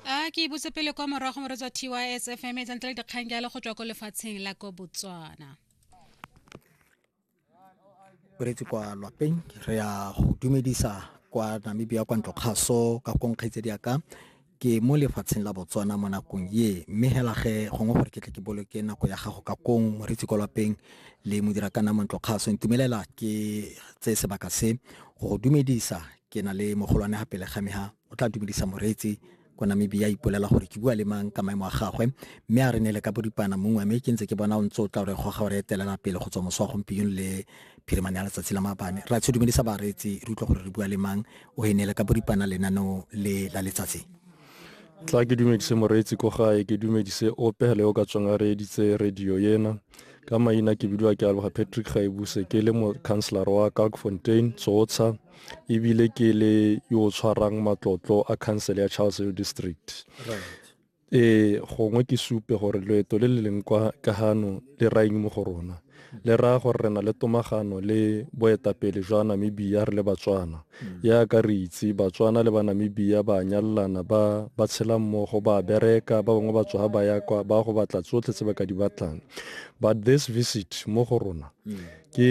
a ke ibutse pele kwa morago mo re tswa tys fm e tsantle dikgang jalo go tswa ko lefatsheng la ko botswana beretse kwa lwapeng re ya go dumedisa kwa namibia kwa ntlo kgaso ka konkgaitse diaka ke mo lefatsheng la botswana mo nakong ye mme hela ge gongwe gore ke tle ke boloke nako ya gago ka kong moretsi kwa lwapeng le modira ka namo ntlo kgaso ntumelela ke tse sebaka se go dumedisa ke na le mogolwane ga pele ga me ha o tla dumedisa moreetsi ko namibia ipolela gore ke bua le mang ka maemo a gagwe mme a re ne le ka bodipana mongwe mme ke ntse ke bona o ntse o tla gore goga gore etelela pele go tswa moso wa gompieno le phirimane ya letsatsi la maabane ra tsho dumedisa bareetsi re utlwa gore re bua le mang o e ne le ka bodipana lenaneo le la letsatsi tla ke dumedise moreetsi ko gae ke dumedise ope le o ka tswang a reeditse radio ena ka maina ke bidiwa ke aloga patrick gaebuse ke le mo councilor wa kalkfontein tsotsha ebile ke le yo o tshwarang matlotlo a council ya charles hill district ee gongwe ke supe gore loeto le le leng kwa ka gano le raeng mo go rona le raya gore re na le tomagano le boetapele jwa namibia re le batswana mm. yaka re itse batswana le banamibia ba nyalelana ba ba tshela mmogo ba bereka ba bangwe ba tswa ba ya kwa ba go batla tsotlhe tse ba ka di batlang but this visit mo go rona mm. ke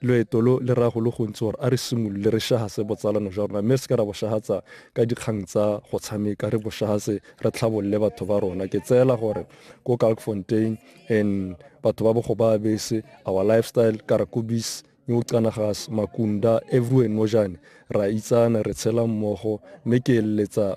Loeto lo le raya go le gontsi gore a re simolole re shahase botsalano jwa rona mme re se ke ra bo shahatsa ka dikgang tsa go tshameka, re bo shahase re tlhabolole batho ba rona. Ke tseela gore ko Kalkfontein and batho ba bogo ba bese, our lifestyle, Karakobis, New Canagas, Makunda, everywhere Nojane, ra itsana, re tshela mmogo mme ke eletsa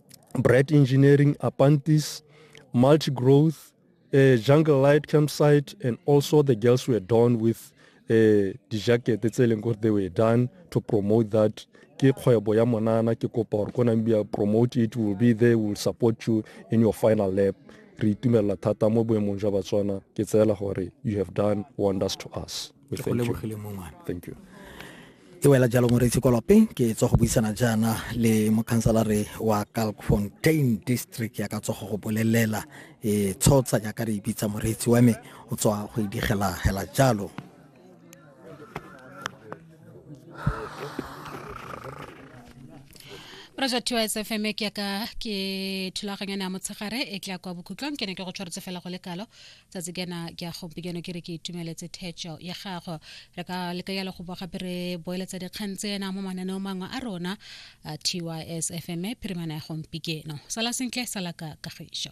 Bright Engineering, Apantis, Multi Growth, uh, Jungle Light Campsite, and also the girls were done with uh, the jacket tse leng gore they were done to promote that ke kgwebo ya monana ke kopa gore ko nambia promote it will be there will support you in your final lap re itumelela thata mo boemong jwa batswana ke tseela gore you have done wonders to us ke go lebogile mo ngwana thank you e wela jalo moreitsi kolope ke tswa go buisana jaana le mokhansalare wa calfontain district ya ka tsogo go bolelela e tshotsa jaaka re ibitsa moreitsi wa me o tswa go idigela hela jalo Roger Tiwa SFM ke ya ka ke thulaganyana ya motshegare e tla kwa bokhutlong ke ne ke go tshwaretse fela go le kalo tsatsi kena ke a gompieno ke re ke itumeletse thetšo ya gago re ka leka yalo go bo gape re boeletsa dikgang tsena mo mananeo mangwe a rona a tys fm phirimana ya gompikeno sala sentle sala ka kagišo